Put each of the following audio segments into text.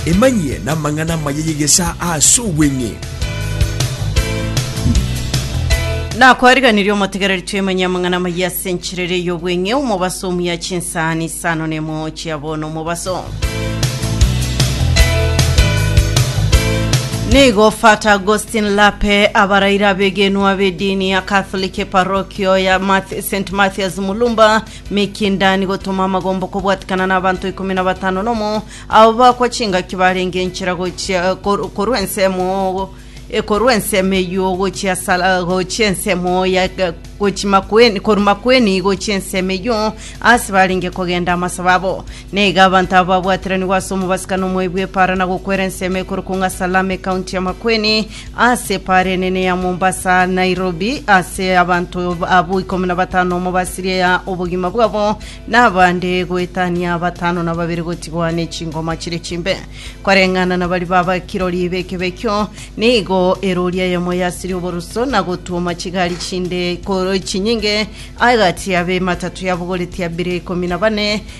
Emanyie namang'ana amaya y'egesaa ase obweng'e. Nakwariganirie omotegereri twemenye amang'ana amaya ase enchera eria y'obweng'e, omobaso omuya chinsaani isano nemo chia bono omobaso. Nigo Fata Augustine Lape abaraire abegenwa b'edini ya Catholic eparokio ya Math St Mathias Mulumba Mikindani gotoma amagombo kobwatikana n'abanto ikomi na batano nomo abo bakwa chingaki barenge enchera gochia kor- korwa ensemo eh, korwa ensemo eyio gochia sala gochia ensemo ya gochi makweni korwa makweni gochia ensemo eyio ase barenge kogenda amasabo abo neiga abanto abo babwatiranigwe ase omobasika nomoebi bw'epaara na gokwera ensemo ekorokwa ng'a salame ekaunti ya makweni Ase epaara enene ya Mombasa, Nairobi, ase abanto abwo ikomi na batano omo basiria obogima bwabo na abande goetania batano na babere gotigwa ne chingoma chire chimbe. Koreng'ana na baria babakirori b'ekebekio, nigo eroori eyemo yasiria oboruso na gotuoma chigari chinde ko- chinyinge agati abe ematatu yabogoretie abere ikomi na bane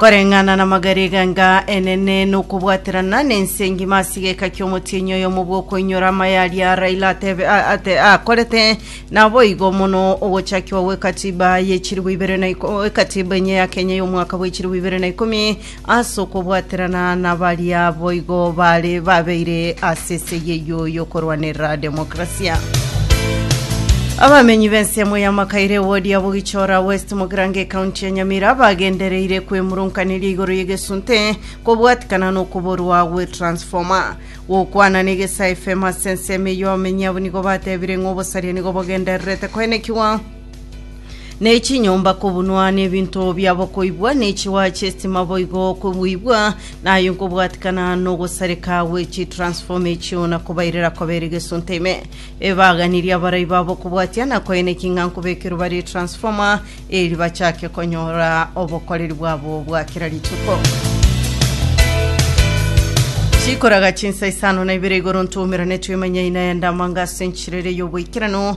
Koreng'ana namagariga nga enene nokobwaterana nense engima asigeka kiomotienyi oyomo bwokoinyora amaya aria Raila atebe, a- ate, akorete naboigo mono ogochakiwa gwekatiba yechiribu ibere na iko, ekatiba enye ya Kenya yomwaka bwechiribu ibere na ikomi As'okobwaterana nabaria boigo bare babeire as'esegi eyio y'okorwanerera demokrasia. Abamenyi b'ensemo ya Makaire ewodi ya Bogichora West Mogirango ekaunti ya Nyamira bagendereire kwemurunkaneria igoro y'egesunte kobwatikana nokoborwa gwe transformer. Gokwana n'egesa FM as'ensemo eyio abamenyi abo nigo batebire ng'a obosaria nigo bogendererete koenekigwa. ne chinyomba kobunwa, na ebinto biabo koibwa, ne chiwaya chi'esitima boigo kobuibwa, na aye nkobwatikana nogosareka gwe chitransfoma echio, na kobairera kobere gesunte ime. Ebaganirie abarai babo kobwatia na koeneki ng'a nkobekerwe bare etransfoma, eri bachake konyora obokoreri bwabo bwa kera rituko. Chikoraga chinsa isano na ibere igoro ntomerane twemanyaine aya ndamanga ase enchirere y'oboikeranu